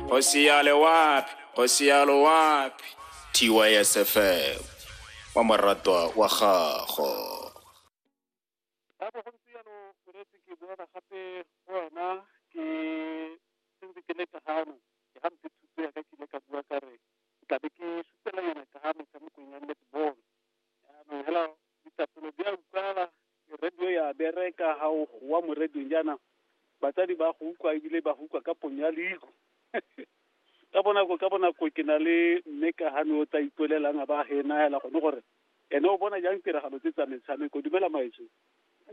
Hosiale wapi? Hosiale wapi? TYSFM wa moratwa wa gago. Ka bo go ntse jalo o retse ke boela gape go wena ke sentse ke le ka gano ke ga mphe thuto ya ka ke ile ka bua ka re ke tlabe ke sutela yona ka ga metshamekong ya netball Jaanong hela ditapolo di a utlwala radio ya bereka ga o goa mo radiong jaana batsadi ba go utlwa ebile ba go utlwa ka ponyo ya leigo ka bonako ka bonako ke na le mme ka gane o tla ipolelang a ba ge ena hela gone gore ene o bona jang tiragalo tse tsa metshameko dumela maetso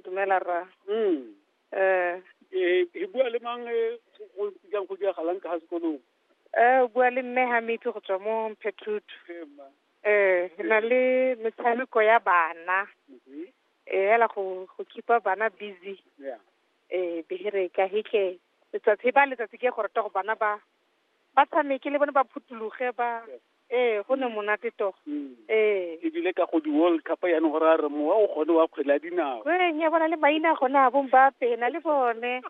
dumela ra mm eh eh e bua le mang eh, go go jang go diragalang ka ga sekolong eh o bua le mme ha metsi go tswa mo mphethutu Ee, mma. ee, re na le metshameko ya bana, e fela go, go keep-a bana busy, ee, bereka he ke, letsatsi e baya letsatsi ke gore tsogo bana ba, ba tshameke le bone ba phuthologe ba, ee, go nne monate to, ee. e bile ka go di-World Cup jaanong go raya gore mowa o gone wa kgwele ya dinao. Ko reng ya bona le maina a gone a bo Mbappe na le bone,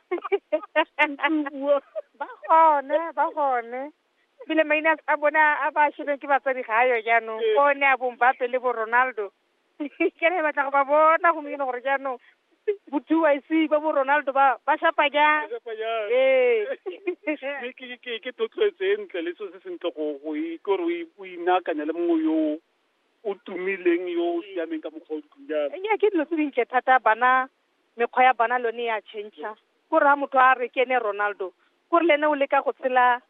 ba gone, ba gone. ebile maina a bona a ba shebeng ke batsadi ga ayo jaanong ko ne a bong bape le bo ronaldo ke re batla go ba bona gompieno gore jaanong bo two i c ba bo ronaldo ba ba shapa jang ee ke thotloetso e ntle le se se sentle go kore o inakanya le mongwe yo o tumileng yo o siameng ka mokgwa o jalo ke dilo tse dintle thata bana mekgwa ya bona lone ya change-a ko raya motho a re ke ene Ronaldo kore le ene o leka go tshela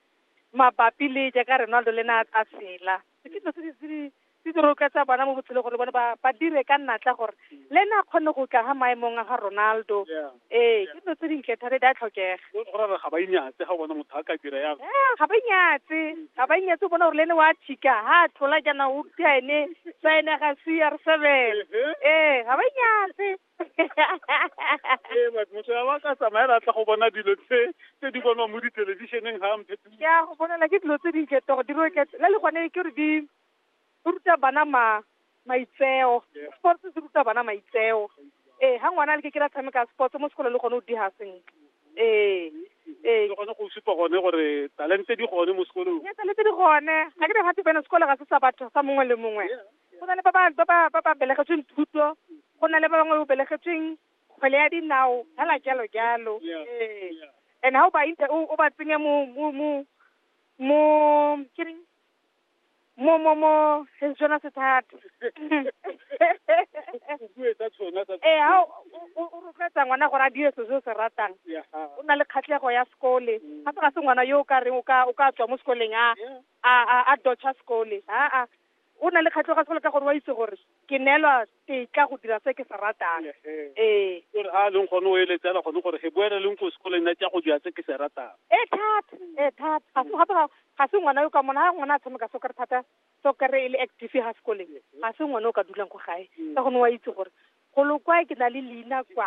mabapi le jaaka Ronaldo le ene a tshela ke dilo tse di- tse di tse di rotloetsa bana mo botshelong gore le bone ba ba dire ka natla gore le ene a kgone go tla ga maemong a ga Ronaldo ee ke dilo tse dintle thata di a tlhokega go gore ga ba inyatse ga bona motho a ka dira yalo eh, ga ba inyatse ga ba inyatse o bona gore le ene wa thika ga a tlhola jaana o ka ene sa ene ga c r seven ee ga ba inyatse ee motho ya ba ka tsamaela tla go bona dilo tse tse di bonwa mo dithelebišeneng ga mphe ke a go bonela ke dilo tse dintle togo di roke la le gone ke re di o ruta bana ma maitseo sports se ruta bana maitseo ee ha ngwana a le ke ke la tshameka sports mo sekolong le gone o diga sentle ee ee gone go supa gone gore talente di gone mo sekolong e talente di gone ga ke re gate bene sekolo ga se sa batho sa mongwe le mongwe go na le ba ba ba ba ba belegetsweng thuto go na le ba bangwe o belegetsweng kgwele ya dinao fela jalo jalo ee and ha o ba o ba tsenye mo mo mo mo ke reng mo mo mo, seng sona se thata . Ee, ha o, o, o, o rotloetsa ngwana gore a dire se se o se ratang, o nna le kgatlego ya sekole, gape ga se ngwana yo o ka reng o ka, o ka tswa mo sekoleng a, a, a, a dodge-a sekole, aa, o na le kgatlego ya sekolo ka gore o a itse gore, ke neelwa tetla go dira se ke se ratang ee o re ha a leng gone o eletsela gone gore he boele leng ko sekoleng nna tsa go dira se ke se ratang e thata e thata ga se gape ga- ga se ngwana yo ka mona ga ngwana a tshameka so kare thata so kare e le active ga sekoleng ga se ngwana o ka dulang ko gae ka gone wa itse gore golo kwa ke na le leina kwa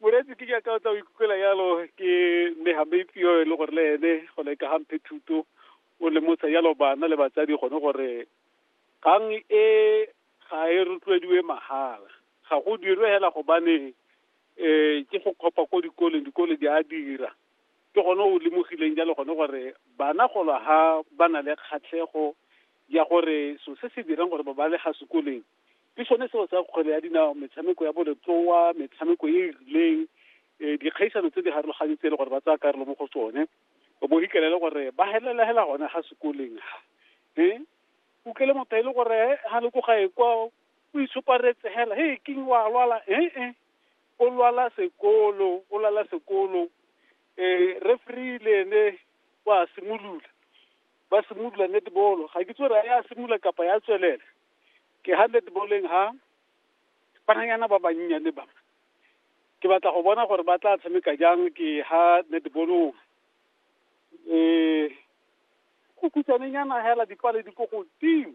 Moreetsi ke jaaka o tla o ikutlwela yalo ke mme Hameitsi yo e le gore le ene go le ka gamphe thuto o lemotsha yalo bana le batsadi gone gore kgang e ga e rotloediwe mahala ga go dirwe hela gobane um ke go kgopa ko dikoleng dikole di a dira ke gone o lemogileng jalo gone gore bana golo ha ba na le kgatlhego ya gore so se se dirang gore ba ba le ga sekoleng ke sone seo sa kgwele ya dinao metshameko ya boletloa metshameko e e rileng um dikgaisano tse di harologanye tse e le gore ba tsaya karolo mo go tsone o bo ikele le gore ba helela hela gone ga sekoleng ha um o kele motho e le gore ga le ko gae kwa o itshoparetse hela he king wa lwala ee o lwala sekolo o lwala sekolo um referee le ene wa simolola ba simolola netball ga ke tsore ya simolola kapa ya tswelela ke ha netballeng ha bananyana ba bannyane ba ke batla go bona gore ba tla tshameka jang ke ha netballong um go khutsanenyana hela dipale di ko godimo